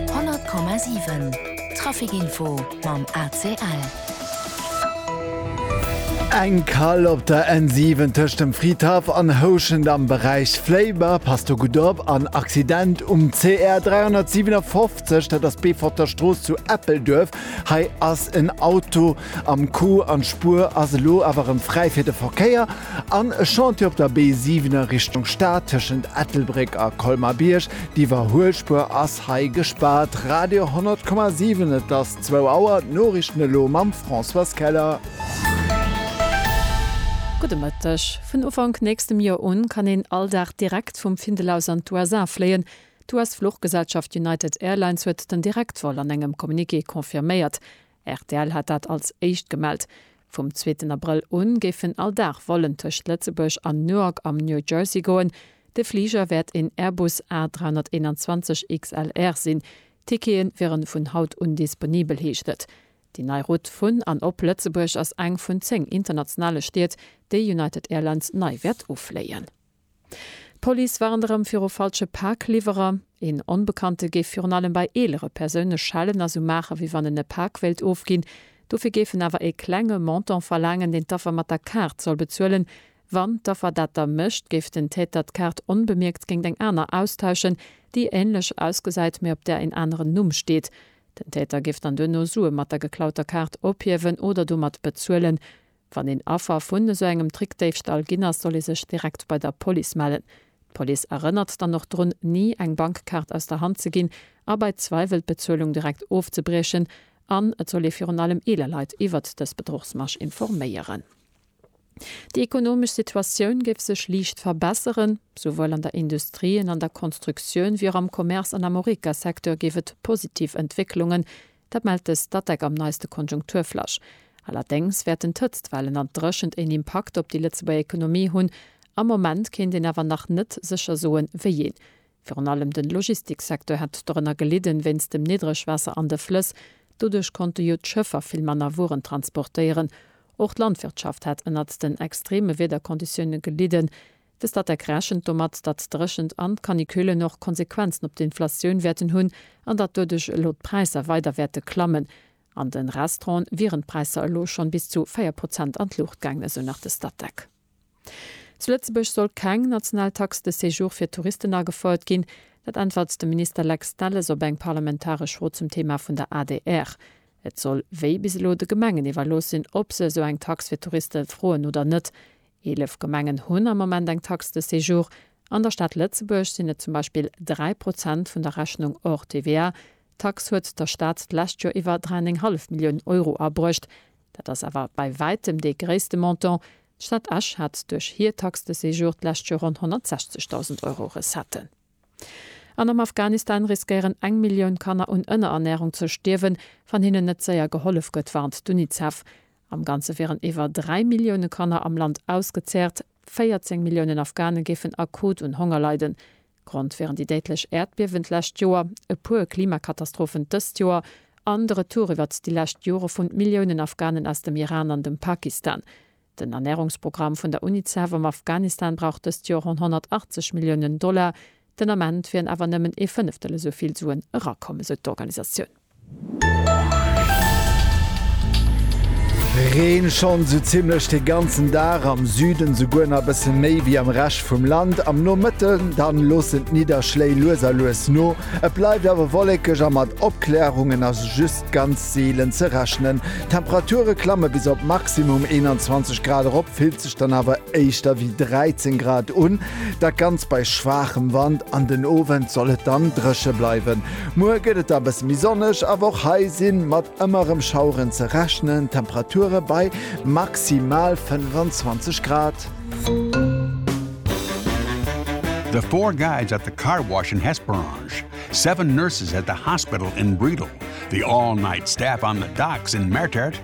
100,7 Trafic Info mam ACL. Eng Kall op der N7 tëscht dem Fridhaff an Houschent am Beräich Fléiber, pass do gutt op, an Accident um CR 357, dat ass d'Beeforter Strooss zu Eppelduerf. Hei ass en Auto Am Q an d'Spuer ass elo awer erëm fräi fir de Verkéier an e Chantier op der B7 a Richtung Stad tëschent Ettelbréck a Colmar-Bierg. D'Iwwerhuelspuer ass hei gespaart. Radio 10,7 Et ass zwou Auer, d'Noriichten elo mam Françoise Keller. Gudde Mëtteg. Vun Ufank nächstem Joer un kann een all Dag direkt vum Findel aus an d'USA fléien. D'US-Fluchgesellschaft United Airlines huet den Direktvol an engem Communiqué confirméiert. Rtl hat dat als éischt gemellt. Vum zweeten Abrëll u géifen all Dag Vollen tëscht Lëtzebuerg an Newark am New Jersey goen. De Fliger wäert een Airbus A321 XLR sinn. Tickete wiere vun haut un disponibel, heescht et. Déi nei Route vun an op Lëtzebuerg ass eng vun 10 internationale Stied, déi United Airlines nei wäert ufléien. D'Police warnt erëm viru falsche Pakliwwerer. Een Onbekannte géif virun allem bei eelere Persoune schellen a sou maachen, wéi wann en e Pak wéilt ofginn. Dofir géif en awer e klenge Montant verlaangen, deen d'Affer mat der Kaart soll bezuelen. Wann d'Affer dat da mécht, géif den Täter d'Kaart onbemierkt géint eng aner austauschen, déi änlech ausgesäit, mee op där een aneren Numm steet. Den Täter géif dann duerno Sue mat der geklauter Kaart ophiewen oder domat bezuelen. Wann een Affer vun esou engem Trickdéifstall ginn ass, soll ee sech direkt bei der Police mellen. D'Police erënnert dann och drun, ni eng Bankkaart aus der Hand ze ginn a bei Zweiwel d'Bezuelung direkt ofzebriechen. An et soll ee virun allem eeler Leit iwwert dës Bedruchsmasch informéieren. Déi ekonomesch Situatioun géif sech liicht verbesseren. Souwuel an der Industrie, en an der Konstruktioun wéi och am Commerce an am Horeca-Secteur géif et positiv Entwécklungen Dat mellt de Statec am neiste Konjunkturflash. Allerdéngs wäerten d'Hëtztwellen an d'Dréchent een Impakt op déi Lëtzebuerger Ekonomie hunn. Am Moment kéint een awer nach net sécher soen, wéiee. Virun allem de Logistiksecteur hätt dorënner gelidden, wéinst dem Niddregwaasser an de Flëss. Doduerch konnte jo d'Schëffer vill manner Wueren transportéieren. Och d'Landwirtschaft hätt ënnert den extreeme Wiederkonditioune gelidden. De Statec rechent domat, datt d'Dréchent an d'Canicullen och Konsequenzen op d'Inflatioun wäerten hunn an datt doduerch elo d'Präisser weider wäerte klammen. An de Restauranten wieren d'Präisser elo schonn bis zu 4 Prozent an d'Luucht gaangen, esou nach de Statec. Zu Lëtzebuerg soll keng national Taxe de séjour fir Touristen agefouert ginn. Dat äntwert de Minister Lex Delles op eng parlamentaresch Fro zum Thema vun der adr. Et soll wéi bis elo de Gemengen iwwerlooss sinn, ob se esou eng Tax fir Touriste froen oder net. Eelef Gemengen hunn am Moment eng Taxe de séjour. An der Stad Lëtzebuerg sinn et zum Beispill 3 Prozent vun der Rechnung hors TVA. D'Taxe huet der Stad d'lescht Joer iwwer 3,5 Milliounen Euro abruecht. Dat ass awer bei wäitem dee gréisste Montant. D'Stad Esch hat duerch hir Taxe de séjour d'lescht Joer ronn 160.000 Euro Recetten. An am Afghanistan riskéieren eng Millioun Kanner un Ënnerernärung ze stierwen, wann hinnen net séier gehollef gëtt, warnt d'Unicef. Am Ganze wieren iwwer 3 Millioune Kanner am Land ausgezehrt, 14 Milliounen Afghane géifen akut un Honger leiden. Grond wieren déi déidlech Äerdbiewen d'lescht Joer, e puer Klimakatastrophen dëst Joer an de Retour iwwert déi lescht Jore vun Milliounen Afghanen aus dem Iran an dem Pakistan. Den Ernärungsprogramm vun der Unicef am Afghanistan brauch dëst Joer ronn 180 Milliounen Dollar, Den Ament wieren awer nëmmen ee Fënneftel esou vill Suen erakomm, esou d'Organisatioun. Reen schonn esou zimmlech de ganzen Dag, am Süden esouguer nach e bësse méi wéi am Rescht vum Land. Am Nomëtten dann loossen d'Nidderschléi lues a lues no, et bleift awer wollekeg a mat Opklärungen ass just ganz seelen ze rechnen. D'Temperature klamme bis op Maximum 21 Grad erop. geet sech dann awer éischter wéi 13 Grad un, dat Ganzt bei schwaachem Wand. An den Owend soll et dann dréche bleiwen. Muer gëtt et da e bësse méi sonneg, awer och hei si mat ëmmer erëm Schaueren ze rechnen, d'Temperature bei maximal 25 Grad. The four guys at the car wash in Hesperange, seven nurses at the hospital in Bredal, the all-night staff on the docks in Mertert,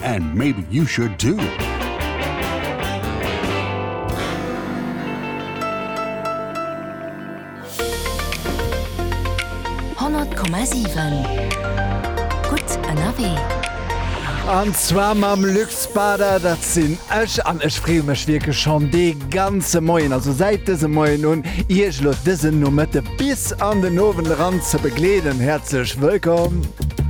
And maybe you should too! An zwar mam Luc Spada, dat sinn ech an ech freeë mech wierklech schonn dee ganze Moien, also säit dësem Moien un, Iech elo dësen Nomëtte bis an den Owend eran ze begleeden. Häerzlech wëllkomm!